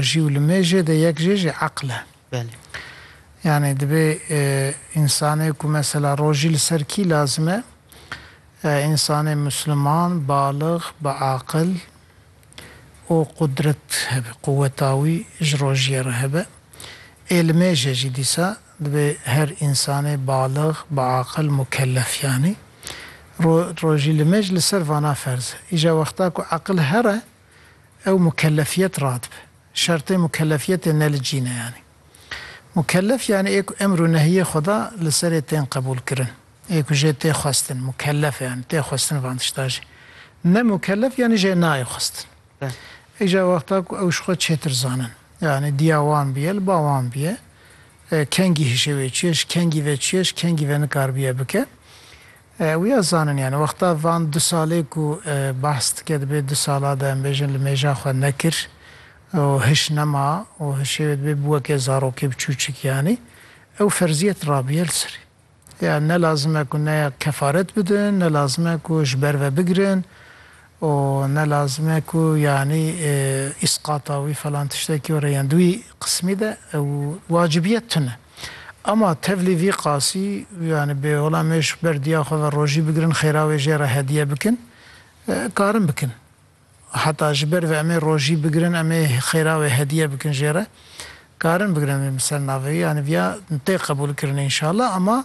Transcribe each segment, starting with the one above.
jî û li mêjê de yek jê jî eql e. Belê. Yanî dibê însanê ku mesela rojî li ser kî lazim e? Însanê musliman, balix, bi aqil û qudret hebe, quweta wî ji rojiyê re hebe. Ê li mêjê jî dîsa dibê her însanê balix, bi aqil, mukellef yanî. Ro rojî li mêj li ser vana ferz e. Îja wexta ku eqil here Ew mukelefiyet radibe. Şertê mukelefiyetê ne li cîn e yanî. Mukelef yanî ê ku emr û nehiyê Xweda li serê tên qebûlkirin. Ê ku jê tê xwestin. Mukelef e yanî tê xwestin van tişta jî. Ne mukelef yanî jê nayê xwestin. Îja wexta ku ew ji xwe çêtir zanin. Yanî diya wan bûye li ba wan bûye. Kengî hişê wê çûye ji kengî ve çûye ji kengî ve nikaribiye bike. Wiya zanin yani wexta van du salê ku behs dike dibê du sala de em bêjin li mêja xwe nekir û hiş nema û hişê wê dibê bi weke zarokê bi çûçik yani ew ferziyet rabiye li serê. Ya ne lazim e ku ne kefaret bidin ne lazim e ku ji ber ve bigirin û ne lazim e ku yani îsqata wî falan tiştekî were yan di wî qismî de ew wacibiyet tune. Ama tevlî vî qasî yanî bi wila mêşk ber diya xwe ve rojî bigirin xêra wê jê re hediye bikin karin bikin. Heta ji ber vê em ê rojî bigirin em ê xêra wê hediye bikin jê re karin bigirin vê miserna vê yanî viya tê qebûlkirinê înşallah ama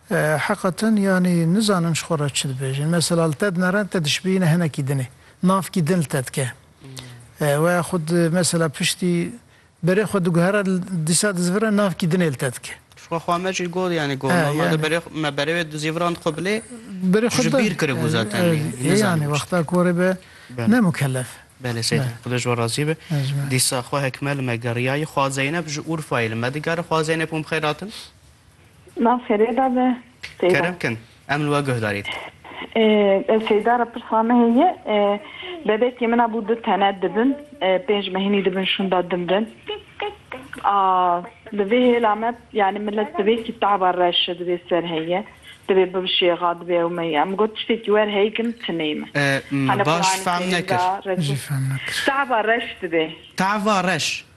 Heqatin yanî nizanin ji xwe re çi dibêjin. Mesela li te dinere te dişibîyîne hinekî dinê. Navkî din li te dike. We ya xwe di mesela piştî berê xwe diguhere dîsa dizivire navkî dinê li te dike. Ji xwe xwe me jî got yanî got normalde berê me berê wê dizîviran dixwe bilê tu ji bîr kiribû zaten nî nizanîbû çi dike. Yanî wexta ku erê be ne mukellef. Belê Seyîdî Xweda ji we razî be. Dîsa xwe hekime li me geriyayî. Xwa Zeyneb ji Urfayê li me digere. Xwa Zeyneb hûn bi xeyr hatin. Nav xêrê da be Seyda. Kerem kin em li we guh darîn. Ee, Seyda re pirsa me heye. Bebekê min a bû du tene dibin. Pênc mehinî dibin şûnda dimrin. A di vê hêla me yani milet di vê kitaba reşe di vê ser heye. Di vê bibişêxa di vê ew me ye. Em got tiştekî wer hey kin timey me. Ee, me baş fehm nekir. Jî fehm nekir. Tava reş di vê. Tava reş.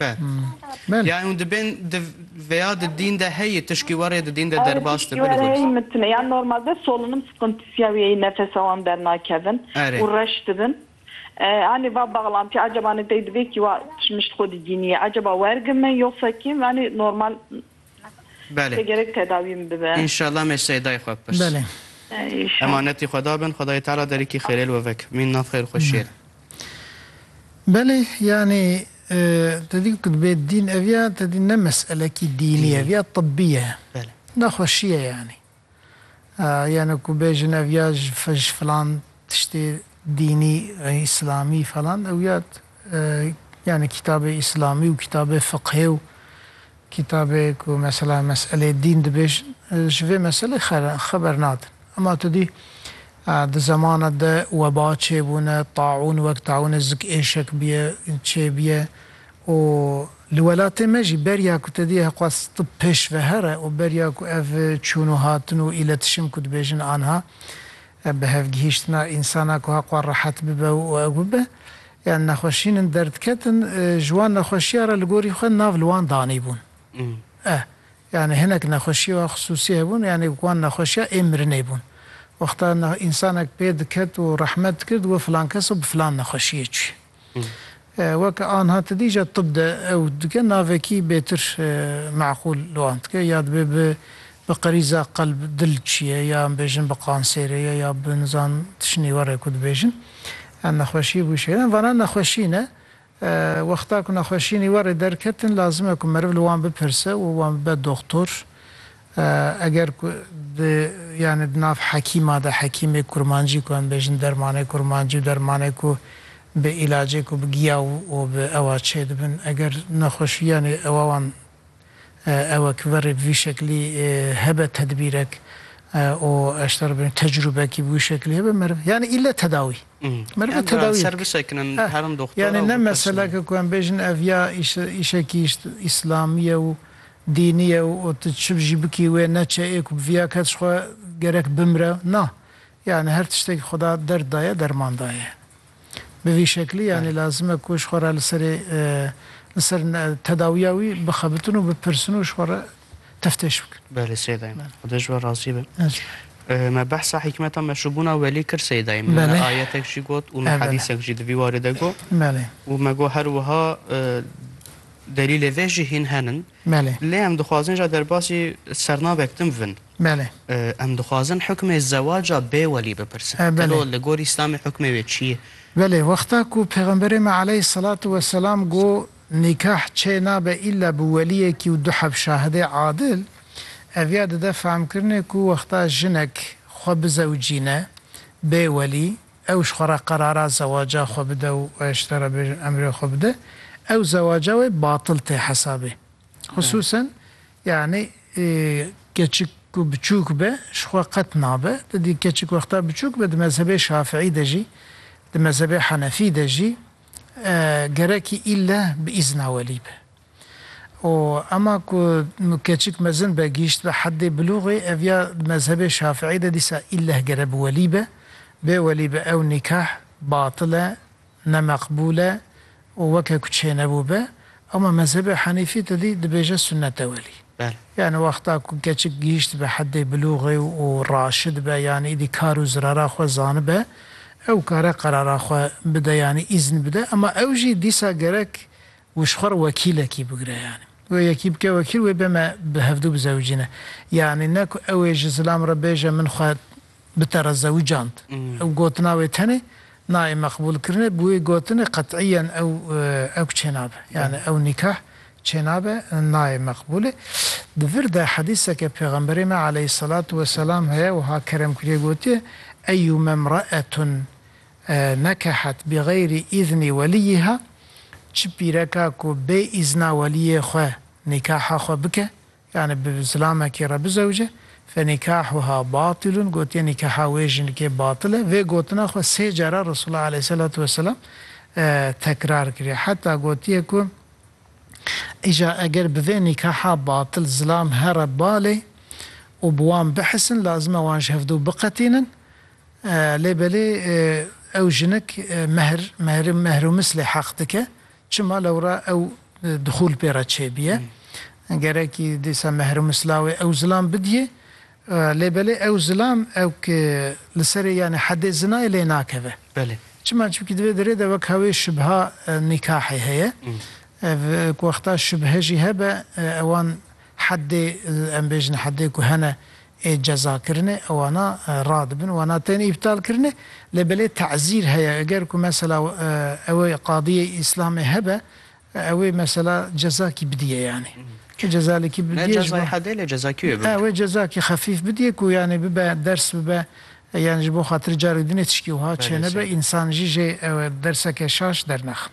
Be. Yani hûn dibên di veya di dîn de heyî tişkî werê di dîn de derbas dibi li gund. Erê mitine ya normalde solunim sıkıntısiya wî yeyî nefesa wan dernakevin û reş dibin. Anî va baxlantî acaba nê tey dibê kî wa tişmiş xwedî dînî ye acaba wergim me yoksa kîm anî normal Belê. Gerek tedawî min bibe. Înşallah me Seydayê xwe bipirs. Belê. Emanetî Xweda bin, Xwedayê Teala derîkî xêrê li we veke. Mîn nav xêr û xweşiyê re. Belê, yanî te dî ku dibê dîn ev ya te dî ne meselekî dînî ev ya tibbî ye. Belê. Nexweşî ye yanî. Yanî ku bêjin ev ya ji ji filan tiştê dînî îslamî falan ew ya yanî kîtabê îslamî û kîtabê fiqhê û kîtabê ku mesela meselê dîn dibêjin ji vê meselê xeber nadin. Ema tu dî di zemana de weba çêbûne, taûn wek taûnê zik êşek bûye çêbûye û Li welatê me jî beriya ku te diyê heqwaz tu pêşvehere û beriya ku ev çûn û hatin û îletişim ku dibêjin anha bihevgihîştina însana ku heqwa rehet bibe û ew bibe yan nexweşîn in derdiketin ji wan nexweşiya re li gorî xwe nav li wan danîbûn eh yanî hinek nexweşiya xisûsî hebûn yanî wan nexweşiya ê mirinê bûn wexta însanek pê diket û rehmet dikir digot filan keso bi filan nexweşiyê çûye. Weke anha tedîja tib de ew dike navekî bêtir meqûl li wan dike ya dibe bi bi qerîza qelb dil çiye ya em bêjin bi qansêrê ye ya bi nizan tişinî were ku dibêjin em nexweşî bû şêrem vana nexweşî ne wexta ku nexweşînî were derketin lazim e ku meriv li wan bipirse û wan bibe doxtor Eger ku di yanî di nav hekîma de hekîmê kurmancî ku em bêjin dermanê kurmancî û dermanê ku bi îlacê ku bi giya û bi ewa çê dibin eger nexweşiyanê ewa wan ewe ki verê bi vî şeklî hebe tedbîrek û eşter bê tecrûbekî bi wî şeklî hebe meriv yanî îlle tedawî meriv tedawî ser bisekinin herin doxtora yanî ne meseleke ku em bêjin ev ya îşekî îşlamî ye û Dînî ye û tu çi jî bikî wê neçe ê ku bi viya kes xwe gerek bimre na. Yanî her tiştekî Xweda derd daye derman daye. Bi vî şeklî yanî lazim e ku ji xwe re li serê li ser tedawiya wî bixebitin û bipirsin û ji xwe re teftêş bikin. Belê sey dayim. Xweda ji we razî be. Me behsa hîkmeta meşûbûna welî kir sey dayim. Min me ayetek jî got û min hedîsek jî di vî warê de got û me got her wiha, Delîlê vê jî hîn henin. Belê. Lê em dixwazin ja derbasî sernavek din bivin. Belê. Em dixwazin hukmê zewaca bê welî bipirsin. Belê. Telo li gor Îslamê hukmê wê çi ye? Belê. Wexta ku Pêxemberê me aleyh selatû we selam got nîkah çê nabe îlla bi weliyekî û du heb şahidê adil, eviya dide fehmkirinê ku wexta jinek xwe bizewicîne bê welî, ew ji xwe re qerara zewaca xwe bide û ji te re bêjin emrê xwe bide, ew zewaca wê batil tê hesabê. Xisûsen yanî keçik ku biçûk be ji xwe qet nabe. Tu dî keçik wexta biçûk be di mezhebê şafîî de jî, di mezhebê henefî de jî gerekî îlle bi îzna welî be. Û ema ku keçik mezin be, gihîşt be heddê bilûxê, ev ya di mezhebê Şafiî de dîsa îlleh gere bi welî be, bê welî be ew nîkah batil e, ne meqbûl e û weke ku çênebû be. Ema mezhebê Henîfî tedî dibêje sunnet e welî. Yanî wexta ku keçik gihîşt be heddê bilûxê û raşid be yanî îdî kar û zirara xwe zanibe, ew kare qerara xwe bide yanî îzn bide. Ema ew jî dîsa gerek Wê ji xwe re wekîlekî bigire yanî wê yekî bike wekîl wê bê me bi hevdu bizewicîne yanî ne ku ew ê ji zilam re bêje min xwe bi te re zewicand. Ew gotina wê tenê nayê meqbûlkirinê bi wê gotinê qet'iyen ew ew çênabe yanî ew nîkah çênabe nayê meqbûlê. Di vir de hedîseke pêxemberê me aleyhîsselatu weselam heye wiha keremkirîye gotiye, Eyyûme mraetun Nekehet bîxeyrî îznî welîyî ha, çi pîreka ku bê îzna welîyê xwe nîkaha xwe bike, yanî bi zilamekî re bizewce, fenîkahuha batîlun, gotiye nîkaha wê jinikê batil e, vê gotina xwe sê cara Resûlullah aleyhîsselatu weselam tekrar kiriye. Heta gotiye ku îja eger bi vê nîkaha batil zilam here balê û bi wan bihisin, lazim e wan ji hev dû biqetînin, Lê belê ew jinik mehr, mehri, mehrumis lê heq dike. Çima lewra ew dixûl pê re çêbiye. Gerekî dîsa mehrumis lawê ew zilam bidiyê. Lê belê ew zilam ew ki li serê yanê hedê zinayê lê nakeve. Belê. Çima? Çimkî di vê derê de wekha wê şibha nîkahê heye. Ev ku wexta şibhe jî hebe ewan. Heddê, em bêjin heddê ku hene ê cezakirinê wana radibin, wana tên îptalkirinê, lê belê tezîr heye, eger ku mesela ew ê qadiyê îslamê hebe, ew ê mesela cezakî bidîye yanî. Ti cezalekî bidîye ji bo. Ne cezayê heddê lê cezakî wê bibe. Wê cezakî xefîf bidîye ku yanî bibe ders bibe, yanî ji bo xatirê carê dinê tişkî wiha çênebe, însan jî jê derseke şaş dernexin.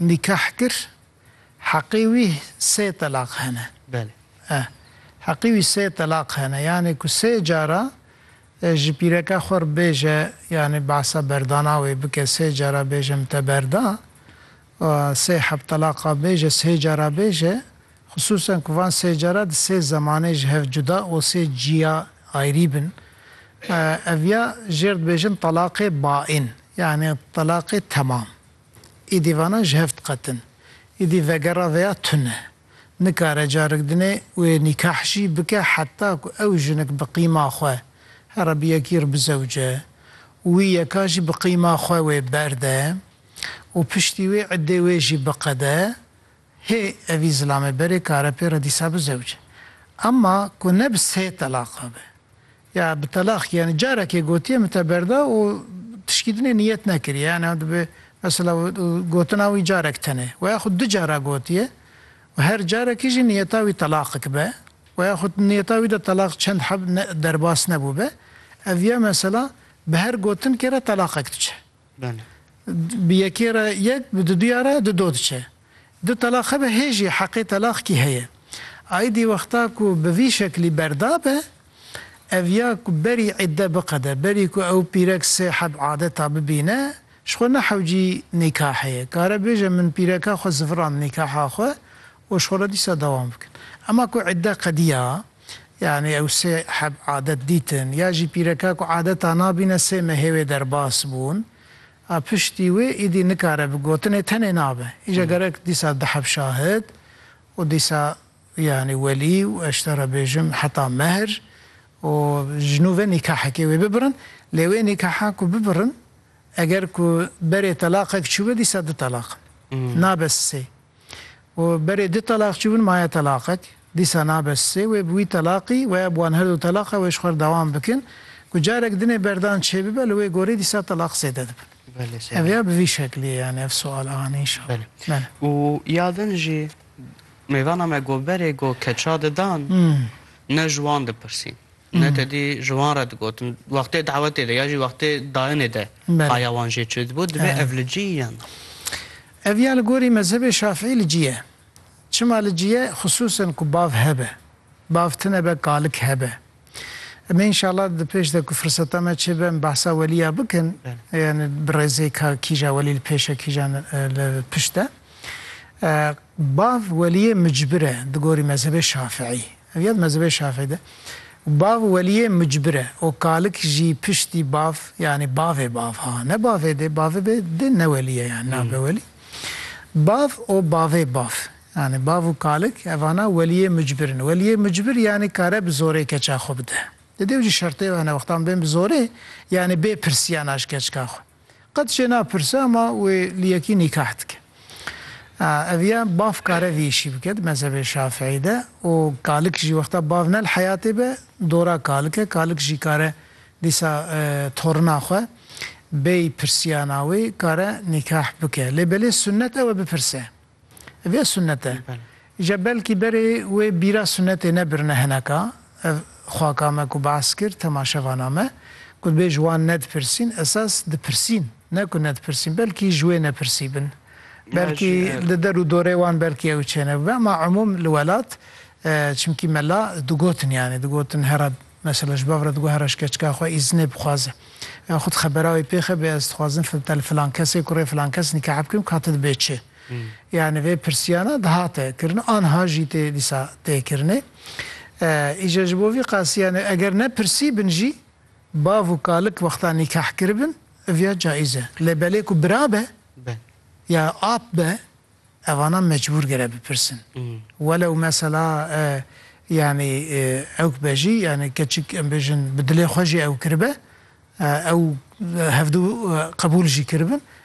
nikah kir heqê wî sê telaq hene. Belê. Eh. Heqê wî sê telaq hene. Yanê ku sê cara ji pîreke xwe re bêje yanê behsa berdana wê bike sê cara bêje min te berda û sê heb telaqa bêje sê cara bêje xisûsen ku van sê cara di sê zemanê ji hev cuda û sê ciya ayrî bin. Eh, ev ya jêr dibêjin telaqê baîn. Yanî telaqê temam. Îdî vana ji hev diqetin. Îdî vegera veya tune. Nikare carek dinê wê nîkah jî bike heta ku ew jinik bi qîma xwe here bi yekî re bizewce û wî yeka jî bi qîma xwe wê berde û piştî wê îddê wê jî biqede Hê evî zilamê berê karepê re dîsa bi zewc. Emma ku ne bi sê telaqa be. Ya bi telaq yani carekê gotiye min te berda û tişkî din ê niyet nekiriye yani ew dibe mesela gotina wî carek tenê we yaxud du cara gotiye û her carekî jî niyeta wî telaqik be we yaxud niyeta wî de telaq çend heb derbas nebûbe ev ya mesela bi her gotinkê re telaqek diçe. Bi yekê re yek, bi duduya re dudo diçe. Du telaq hebe hê jî heqê telaq kî heye. Aîdî wexta ku bi vî şeklî berda be, ev ya ku berî îdde biqede, berî ku ew pîrek sê heb adeta bibîne, ji xwe nehewcî nîkah heye. Kare bêje min pîreka xwe zivirand nîkaha xwe û ji xwe re dîsa dewam bikin. Ema ku îdde qediya. Yanî ew sê heb adet dîtin. Ya jî pîreka ku adeta nabîne sê mehê wê derbas bûn. A piştî wê îdî nikare bi gotinê tenê nabe. Îja gerek dîsa di heb şahid û dîsa yanî welî û ez ji te re bêjim heta mehr û ji nû ve nîkahekê wê bibirin. Lê wê nîkaha ku bibirin eger ku berê telaqek çûbe dîsa du telaq in. Nabe sê. Û berê du telaq çûbûn maye telaqek, dîsa nabe sê, wê bi wî telaqî weya bi wan her du teleqa wê ji xwe re dewam bikin, ku carek dinê berdan çê bibe li wê gorî dîsa telaq zêde dibin. Ev ya bi vî şeklî ye yanî ev sual a anî inşallah. Belê. Belê. Û ya din jî mêvana me got berê got keça didan ne ji wan dipirsîn ne tedî ji wan re digotin wextê dawetê de ya jî wextê dayinê de haya wan jê çi dibû, divê ev li cî yan. Ev ya li gorî mezhebê Şafîî li cî ye. Çima li cî ye? Xisûsen ku bav hebe. Bav tine be kalik hebe. Em ê înşallah di pêş de ku firseta me çêbe em behsa welî ya bikin. Yanî bi rêzê ka kîja welî li pêş e kîjan li pişt e. Bav weliyê micbir e di gorî mezhebê Şafîî. Ev ya di mezhebê Şafî de bav weliyê mucbir e û kalik jî piştî bav yanî bavê bav ha ne bavê dê bavê bê dê ne welî ye yanî nabe welî. Bav û bavê bav yanî bav û kalik evana weliyê mucbir in. Weliyê mucbir yanî kare bi zorê keça xwe bide. Di dêw jî şertê hene wextan bên bi zorê yanî bê pirsiya naş keçka xwe. Qet jê napirse ama wê li yekî nîkah dike. Ev ya bav kare vî îşî bike di mezhebê şafîî de û kalik jî wexta bav ne li heyatê be dora kalik e. Kalik jî kare dîsa torina xwe bêyî pirsiyana wê kare nîkah bike. Lê belê sunnet ew e bipirse. Vê sunnete je belkî berê wê bîra sunnetê nebirine hineka ev xaka me ku behs kir temaşevana me ku dibê ji wan nedipirsîn esas dipirsîn ne ku nedipirsîn belkî ji wê nepirsî bin belkî li der û dorê wan belkî ew çênebibe ema umûm li welat çimkî mela digotin yanî digotin herab Mesela ji bav re diguhere ji keçika xwe îznê bixwaze. Ya xwe di xebera wê pêxe bê ez dixwazim fil li filan kesê kurê filan kes nîkah bikim ka tu dibê çi? Yanî vê pirsiyana dihate kirin anha jî tê dîsa tê kirinê. Îca ji bo vî qasî yanî eger ne pirsî bin jî bav û kalik wexta nîkah kiribin ev ya caîz e. Lê belê ku bira be ya ap be Evana mecbûr gere bipirsin. Welew mesela yanî ewk be jî yanî keçik em bêjin bi dilê xwe jî ew kiribe ew hevdu qebûl jî kiribin